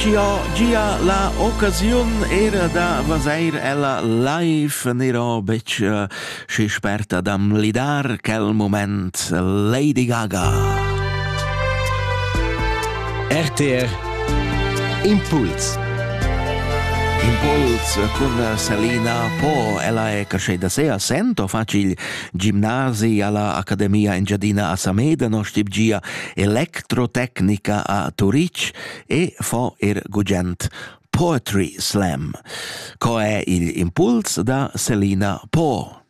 Gia gia la occasiun era da vaseir ella live n'ero betg eh, schi sperta dam lidar quel moment Lady Gaga. RTR Impuls Impuls con Selina Po, ella è casce da se assento facil gimnasi alla Accademia Engiadina a Sameda, no stip gia Electrotecnica a Turitg e fo er gugent Poetry Slam. Co è il impuls da Selina Po?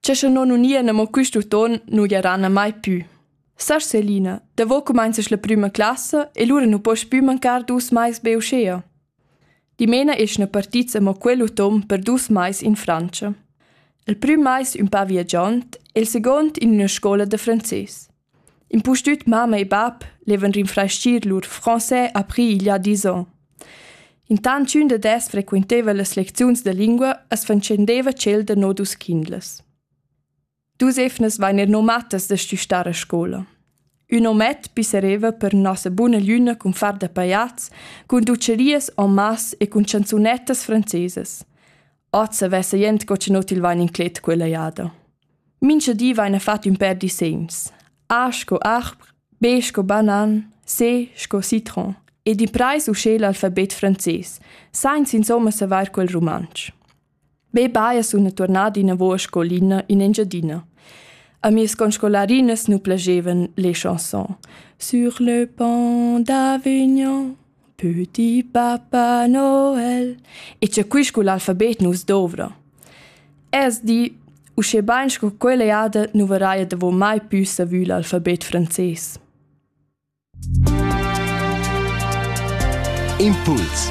C'è che non unia ne mo questo ton non gieranna mai più. Sas Selina, da vo comences la prima classe e lura non poss più mancar dus mais be uscea. Dimena eschna partits amo quell'utom per dus mais in Frantscha. Il prüm mais ün pa viagiond e'l seguond in üna scoula da frances. Impustüt mamma e bap levan rinfraschir lur français après il y a dis ans. Intant ch'ün dad els frequenteva las lecziuns da lingua as fatschendeva tschel da no dus quindlas. Dus efnas vegnan nomatas da stüstar a scoula. Ün omet pissereva per nossa buna gliuna cun far da pajats, cun ducerias en masse e cun chanzunettas francesas. Oz avessa jent co che not il vain inclet quella jada. Mincha di vaina fat ün per disegns. A sco arbre, B sco banan, C sco citron ed in preis uschè l'alfabet frances, sainz insomma savair quel rumantsch. Be baia sun turnada inavo a scolina in Engiadina. A mias conscolarinas nu plagevan le chanson Sur le pont d'Avignon Petit Papa Noel e c'è qui sco l'alfabet nus dovra. Es di, uschè bain sco quella jada nu varaia davo mai pü savü l'alfabet frances. Impuls